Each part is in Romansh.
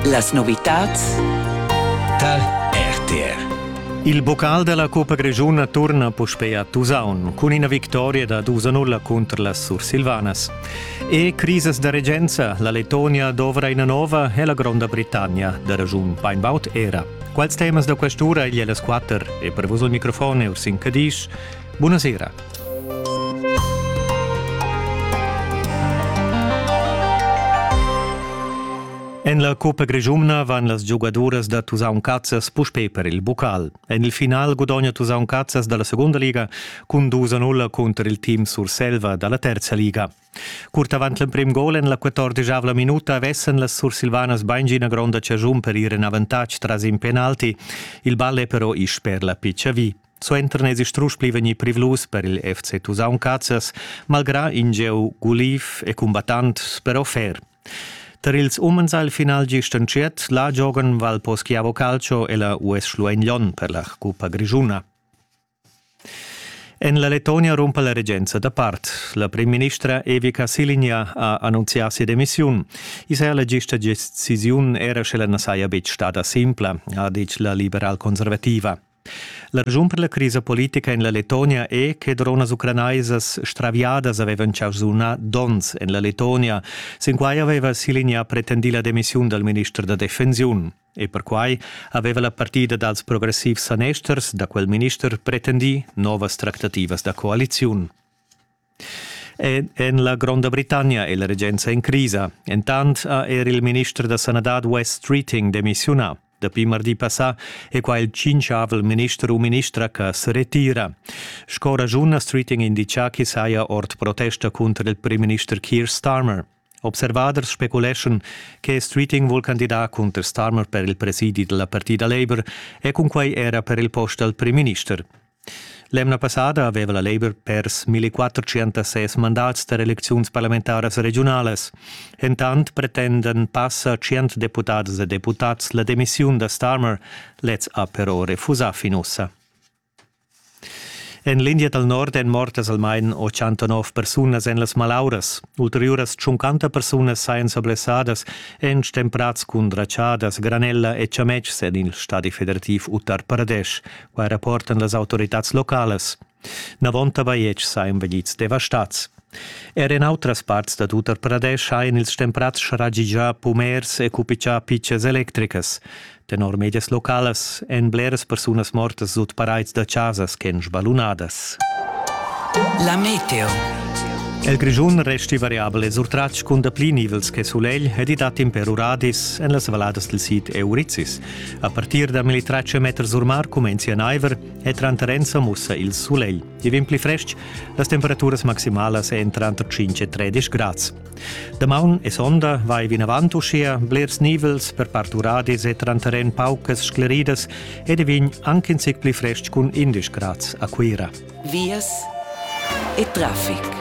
Las novitads tar RTR. Il bocal della Coppa Grigiuna torna puspei a Tusaun cun ina victoria da 2-0 contro las Sursilvanas. E crisis da regenza, la Letonia dovra ina nova e la Gronda Britannia da ragiun Peinbaut era. Quals temas da questura igl e las quatter e per vos il microfon Ursin Cadisch. Buonasera. En la Coppa Grischumna van las giugaduras da Tusaun Cazzas puspè per il bucal. En il final gudogna Tusaun Cazzas da la segunda liga cun dus a nulla cunter il team Surselva da la terza liga. Curt avant l'emprim gol en la 14 minuta vessen las sursilvanas baingina gronda ciagiun per ir en avantatg tras in penalti. Il ball è però isch per la piccia vi. Suenter n'esi strusch pli vegnì privlus per il FC Tusaun Cazzas, malgrà in gieu guliv e cumbattant però fer. Tar ils umens al final gist entschiet la giogan Valposchiavo Calcio e la US Schluein Lyon per la Cuppa Grischuna. En la Letonia rumpa la regenza da part. La primministra Evica Siligna ha annunzià sia demissiun. I saja la gista decisiun era sche la na saja betg stada simpla, ha ditg la liberal-conservativa. La raschun per la crisa politica en la Letonia è che dronas ucranaisas straviadas avevan jau sunà donns en la Letonia. Sin quai aveva Silinja pretendì la demissiun dal minister da defensiun. E perquai aveva la partida dals progressivs sanesters da quel minister pretendì novas tractativas da coaliziun. En la Gronda Britannia è la regenza en crisa. Entant ha er il minister da sanadad Wes Streeting demissiunà. Dapi mardi passà è qua il tschintschavel minister u ministra che se retira. Sco ragiun ha Streeting indicà ch'i saja ord protesta cunter il primminister Keir Starmer. Observaders speculeschan che Streeting vul candidar cunter Starmer per il presidi della partida Labour e cunquei era per il post dal primminister. L'emna passada aveva la Labour pers 1406 mandats da elecziuns parlamentaras regionalas. Entant pretendan passa 100 deputadas e deputats la demissiun da Starmer. Lez ha però refusà fin ussa. En l'India dal nord èn mortas almain 89 persunas en las malauras. Ulteriuras 50 persunas sajan sa blessadas, èn stemprads cun dratschadas, granella e chametgs en il stadi federativ Uttar Pradesh. Quai rapportan las autoritads localas. Navonta bajetgs sajan vegnids devastads. Er en autras parts dad Uttar Pradesh hajan ils stemprads scharegià pumers e cupichà pitschas electricas. Tenor medias localas èn bleras persunas mortas sut paraids da chasas ch'èn sballunadas. La meteo. El Grischun resti variabel e surtratg cun dapli nivels che sulegl ed i dat imper uradis en las valladas del sid Eurizis. A partir da 1300 meters sur mar cumencia naiver e tranter ensa mussa il sulegl. Ti vegn pli frestg, las temperaturas maximalas èn tranter 5 e 13 grads. Damaun e sonda vai vinavant uschia blers nivels per part uradis e tranteren paucas scleridas ed è vegn anche in zic pli frestg cun 11 grads a Cuira. Vias e traffic.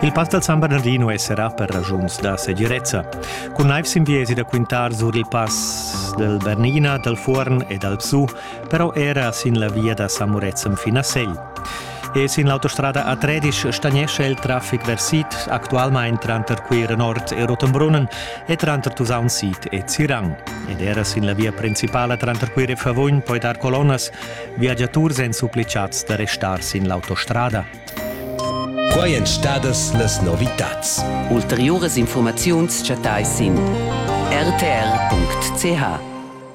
Il pass dal San Bernardino esserà per ragiuns da segirezza. Cun naiv sin viesi da quintar sur il pass del Bernina, dal Fuorn e dal Psu però era sin la via da Samurezzem fin a Segl. E sin l'autostrada a Tredisch stagnescha il traffic versit actualmain tranter Cuira Nord e Rotenbrunnen e tranter Tusaun Sid e Zirang. Ed era sin la via principala tranter Cuira e Favugn poi dar colonnas, viagiaturs èn supplicats da restar sin l'autostrada. Qua èn stadas las novitads. Ulteriuras informaziuns chattais sin rtr.ch.